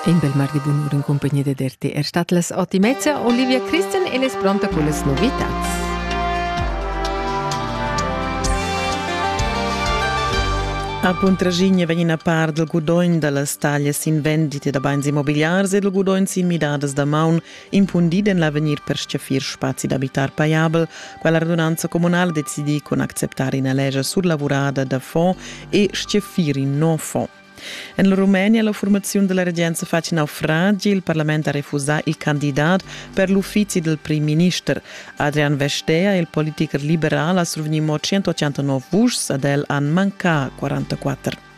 In bel mar de bunur in compagnia ded RTR er stat las Otimezza Olivia Christen e es pronta con las novitats. A Puntraschigna vegn a par del gudogn da las taglias in vendite da bains immobiliars e del gudogn sin midadas da maun impundid en l'avegnir per schaffir spazi d'abitar paiabel, quella radunanza comunale decidi con acceptar ina legia surlavurada da fond e schaffir in no fond. En la Rumenia la formaziun della regenza fa in naufragi. Il parlament ha refusà il candidat per l'uffizi del prim minister. Adrian Vestea, il politiker liberal, ha survegni mo 189 vuschs, ad el han manca 44.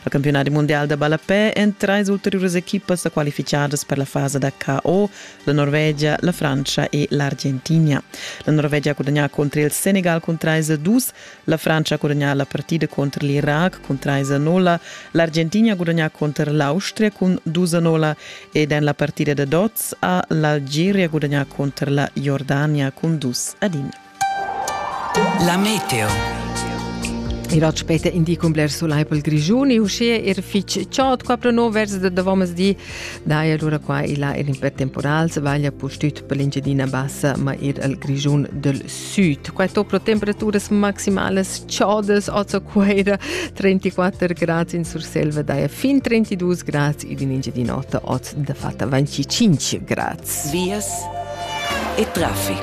Il campionat mondial da ballapè en treis ulteriuras equipas qualificadas per la fase da KO, la Norvegia, la Francia e l'Argentina. La Norvegia ha gudagnà contro il Senegal cun 3-2, La Frantscha ha gudagnà la partida contr l'Irac cun 3 a 0, l'Argentina ha gudagnà contr l'Austria cun 2 a 0 ed en la partida da dots ha l'Algeria gudagnà contr la Jordania cun 2 ad 1. La meteo Il rot spete indicum bler sulai pel Grigiun e uschia er fich chod qua pro no vers da davommas di dai allura qua e là er in per temporal se vaglia pustüt per l'Engiadina Bassa ma ir al Grigiun del Süd. Quai dopra temperaturas maximalas chadas a Zacuera, 34 grads in Surselva daja fin 32 grads ed in Engiadin'Ota oz da fatta 25 grads. Vias e traffic.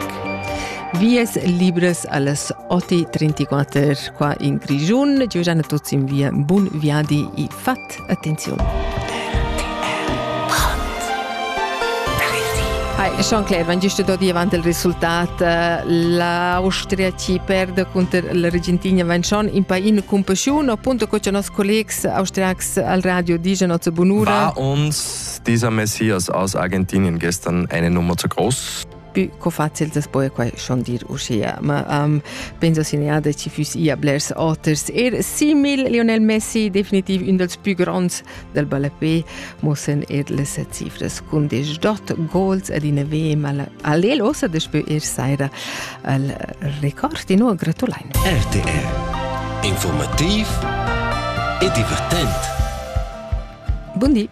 Vias libres alles 8.34 qua in Grigiun. Giugiana tuts in via Bun Viadi e Fat. Attenziun. Jean-Claude, wenn gest dort avanti il risultat, l'Austria ci perde contro l'Argentina, wenn schon in pain compassion, appunto co i nostri collegs austriacs al radio dicono zu Bonura. War uns dieser Messias aus Argentinien gestern eine Nummer zu groß? più co facil das poi quai schon dir uschia ma um, penso segnade ci füss ia blers oters er simil Lionel Messi definitiv un dels più gronds del ballapé mossen er les cifras cun des dot goals ad in ve ma allel ossa despö er saira al record di no gratulain RTR informativ e divertent Buondì